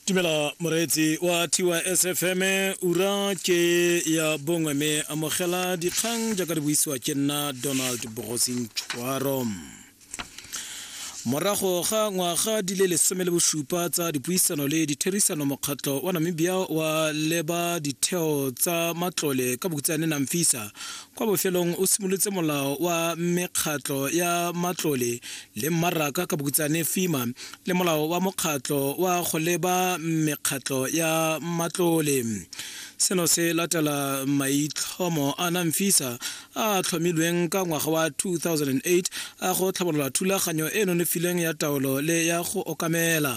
tumela moreetsi wa tys fm ura ke ya bongwe mme amogela dikgang jaaka di buisiwa ke nna donald bogosing tshwaro morago ga ngwaga di le lesome le bosupa tsa dipuisano le ditherisano mokgatlho wa namibia wa leba ditheo tsa matlole ka bokutsane namfisa kwa bofelong o simolotse molao wa mekgatlho ya matlole le mmaraka ka bokutsane FEMA le molao wa mokgatlo wa go leba mekgatlo ya matlole. Seno se latela maitlhomo a NAMFISA a a tlhomilweng ka ngwaga wa 2008 a go tlhabolola thulaganyo e e nonofileng ya taolo le ya go okamela.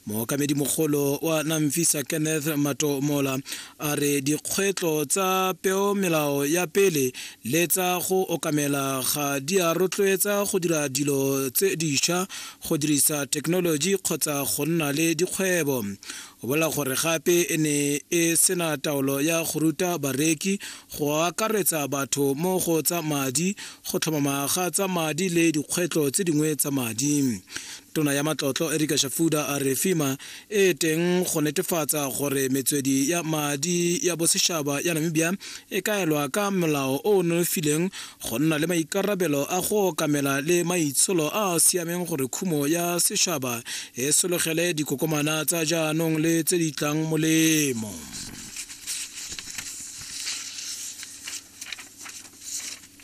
Mookamedimogolo wa NAMFISA Kenneth Matomola A re dikgwetlho tsa peomelao ya pele le tsa go okamela ga di a rotloetsa go dira dilo tse dišwa, go dirisa thekenoloji kgotsa go nna le dikgwebo. O bolela gore gape e ne e sena taolo ya go ruta bareki go akaretsa batho mo go tsa madi, go tlhomama ga tsa madi le dikgwetlho tse dingwe tsa madi. Tona ya Matlotlo Erika Shafuda a re FEMA e e teng go netefatsa gore metswedi ya madi ya bosetšhaba ya namibia e kaelwa ka molao o o nonofileng go nna le maikarabelo a go okamela le maitsholo a a siameng gore khumo ya setšhaba e sologele dikokomana tsa jaanong le tse di tlang molemo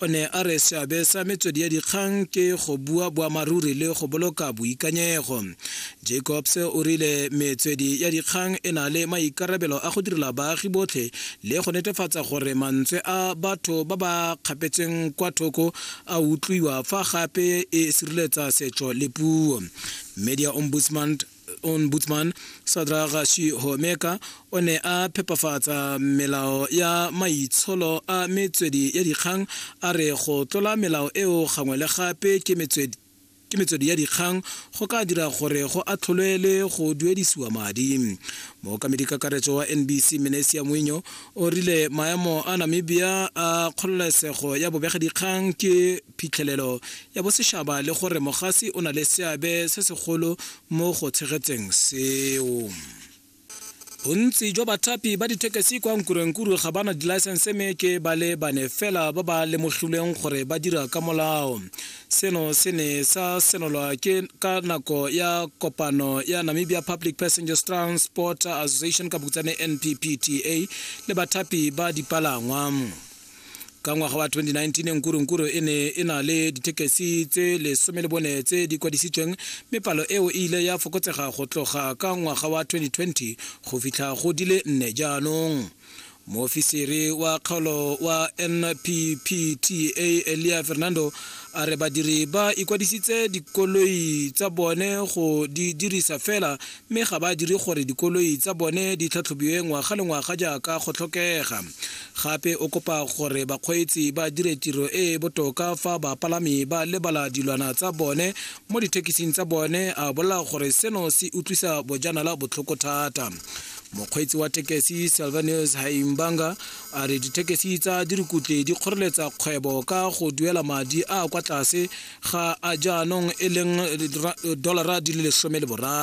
O ne a re seabe sa metswedi ya dikgang ke go bua boammaaruri le go boloka boikanyego. Jacobs o rile metswedi ya dikgang e na le maikarabelo a go direla baagi botlhe le go netefatsa gore mantswe a batho ba ba kgapetsweng kwa thoko a utlwiwa fa gape e sireletsa setso le puo. Media Ombudsman ombudsman sadra gashi homeka o ne a phepafatsa melao ya maitsholo a metswedi ya dikgang a re go tlola melao eo gangwe le gape ke metswedi ke metswedi ya dikgang go ka dira gore go atlholwe le go duedisiwa madi mookamedi kakaretso wa nbc menesia moinyo o rile maemo a namibia a kgololesego ya bobegedikgang ke phitlhelelo ya bosešaba le gore mogasi o na le seabe se segolo mo go tshegetseng seo bontsi jwa bathapi ba dithekesi kwa nkurenkuru ga ba na dilaesense mme ke ba le bane fela ba ba lemogilweng gore ba dira ka molao seno se ne sa senolwa ke ka nako ya kopano ya namibia public passengers transport association ka bokutsane nppta le bathapi ba dipalangwa ka ngwaga wa 2019 nkurunkuru e ne e na le dithekesi tse lesome le bone tse di kwadisitsweng mme palo eo e ile ya fokotsega go tloga ka ngwaga wa 2020 go fitlha go di le nne jaanong moofisiri wa kgaolo wa nppta elia fernando a re badiri ba ikwadisitse dikoloi tsa bone go di dirisa fela mme ga ba dire gore dikoloi tsa bone di tlhatlhobiwe ngwaga le ngwaga jaaka go tlhokega gape o kopa gore bakgweetsi ba dire tiro e e botoka fa bapalami ba lebala dilwana tsa bone mo dithekising tsa bone a bolela gore seno se utlwisa bojanala botlhoko thata mokgweetsi wa tekesi salvanus haimbanga a re dithekesi tsa dirikutle di kgoreletsa kgwebo ka go duela madi a kwa tlase ga a jaanong e leng dolara di le lesome le boraro